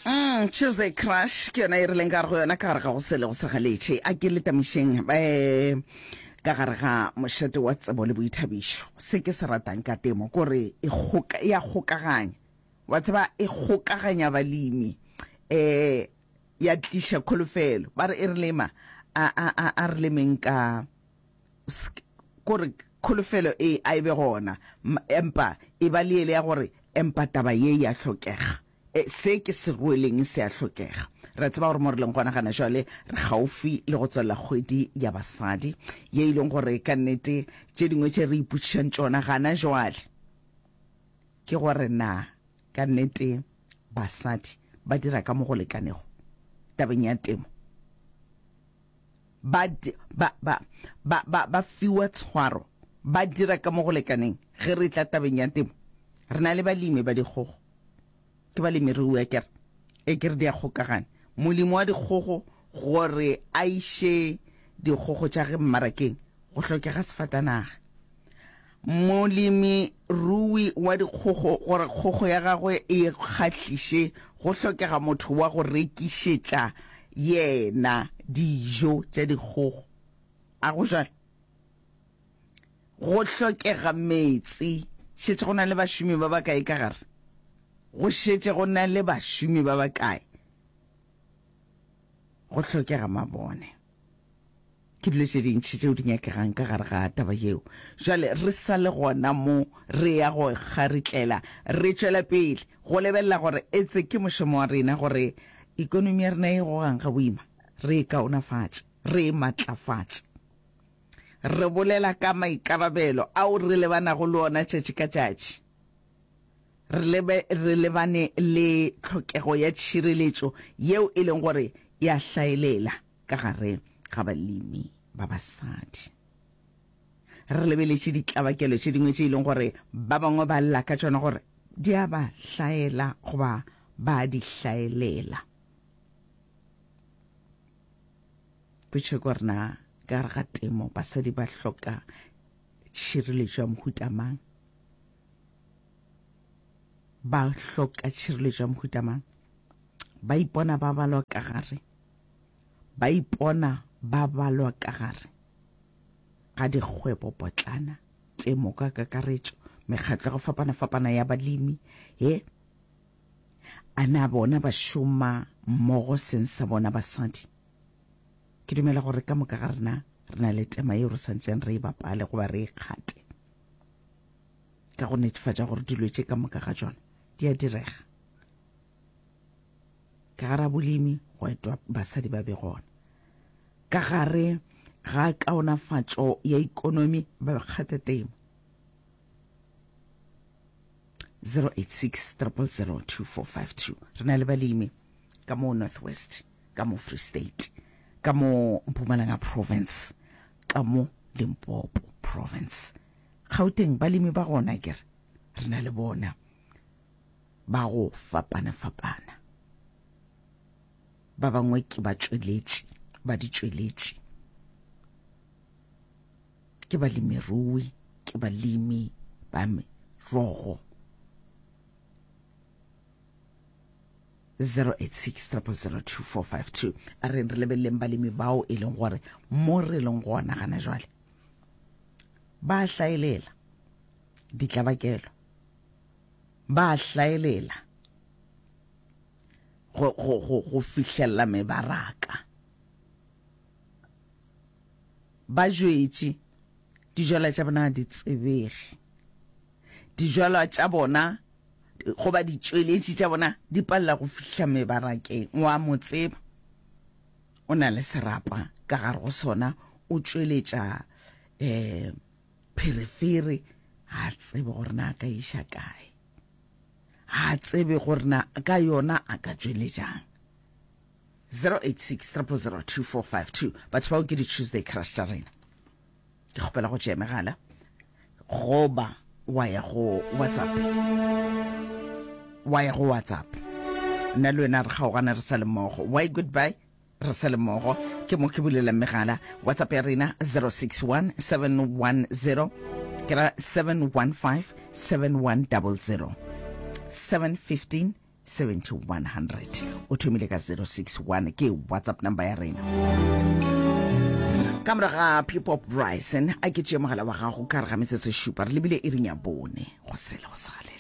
Mm, Tuesday Crush ke yona e re leng ka re go yona ka gare ga go sele go segaletše a ke letamišeng um eh, ka gare ga mošate wa tsebo le boithabišo se ke se ratang ka temo kore e kgoka- e a kgokaganya wa tseba e kgokaganya balemi um ya tliša kholofelo ba re e re lema a, a, a, a re lemeng ka Sk gore kholofelo e a e be gona, empa e ba le yele ya gore, Empa taba ye ya hlokega. E, se ke se rweleng se a hlokega. Re a tseba gore mo re leng gona gana jwale, re kgaufwi le go tswalela kgwedi ya basadi, ye e leng gore ka nnete tše dingwe tše re ipotšišang tšona gana jwale ke gore na ka nnete basadi ba dira ka mo go lekanego tabeng ya temo. ba, ba, ba, ba, ba, ba fiwa tshwaro, ba dira ka mo go lekaneng ge re tla tabeng ya temo. Re na le balemi ba dikgogo. Ke balemirui a kere, e kere di a kgokagana. Molemi wa dikgogo gore a iše dikgogo tša ge mmarakeng go hlokega sefatanaga. Molemirui wa dikgogo gore kgogo ya gagwe e kgahliše go hlokega motho wa go rekišetša yena dijo tša dikgogo. A go bjalo? Go hlokega meetse. Šetše go na le bašomi ba bakae ka gare? Go šetše go na le bašomi ba bakae? Go hlokega mabone. Ke dilo tše dintši tšeo di nyakegang ka gare ga taba yeo. Bjale, re sa le gona mo, re ya go kgaritlela, re tšwela pele go lebelela gore etse ke mošomo wa rena gore ekonomi ya rena e gogang ga boima, re e kaonafatše, re e matlafatše. Re bolela ka maikarabelo ao re lebanago le ona tšatši ka tšatši. Re, lebe, re lebane le tlhokego ya tšhireletšo yeo e leng gore e a hlaelela. ka gare ga balemi ba basadi. Re lebeletše ditlabakelo tše dingwe tše e leng gore ba bangwe ba lla ka tšona gore di a ba hlaela goba ba di hlaelela. Potše gore na ka gare ga temo basadi ba hloka tšhireletšo ya mohuta mang? Ba hloka tšhireletšo ya mohuta mang? Ba ipona ba balwa ka gare ba ipona ba balwa ka gare ga dikgwebopotlana, temo ka kakaretšo, mekgatlo ya go fapana-fapana ya balemi ye. A na bona ba šoma mmogo seng sa bona basadi? Ke dumela gore ka moka ga rena re na le tema yeo re santšeng re e bapale goba re e kgate ka go netefatša gore dilo tše ka moka ga tšona di a direga. Ka gare a bolemi gwa etwa basadi ba be gona. Ka gare ga kaonafatšo ya ikonomi ba be kgata temo. 086 000 2452 Re na le balemi ka mo North West, ka mo Free State, ka mo Mpumalanga Province, ka mo Limpopo Province. Gauteng balemi ba gona kere re na le bona. ba go fapana-fapana. Ba bangwe ke batšweletši ba ditšweletši, ke balemirui, ke balimi ba merogo. 0863002452 a re re lebeleleng balemi bao e leng gore mo re leng gona gana jwale ba hlaelela ditlabakelo Ba a hlaelela go, go, go, go fihlelela mebaraka. Ba jwetše dijalwa tša bona di tsebege. Dijalwa tša bona goba ditšweletši tša bona di palela go fihla mebarakeng wa mo tseba o na le serapa ka gare go sona o tšweletša um Pherefere ga a tsebe gore na a ka iša kae, ga a tsebe gore na ka yona a ka tšweletšang. 086 000 2452 batho bao ke di-tuesday crush tša rena ke kgopela go tšea megala goba wa ya go whatsapp wa ya go whatsapp nna le wena re kgaogana re sa le mmogo why goodbye Re sale mmogo, ke mo ke bulelang megala. WhatsApp ya rena 061 710 ke ra 715 7100 715 7100 o thomile ka 061 ke WhatsApp number ya rena ka morago ga people bryson a ke tšee mogala wa gago ka re ga metsotso šupa re lebile e rinya bone go sele go sale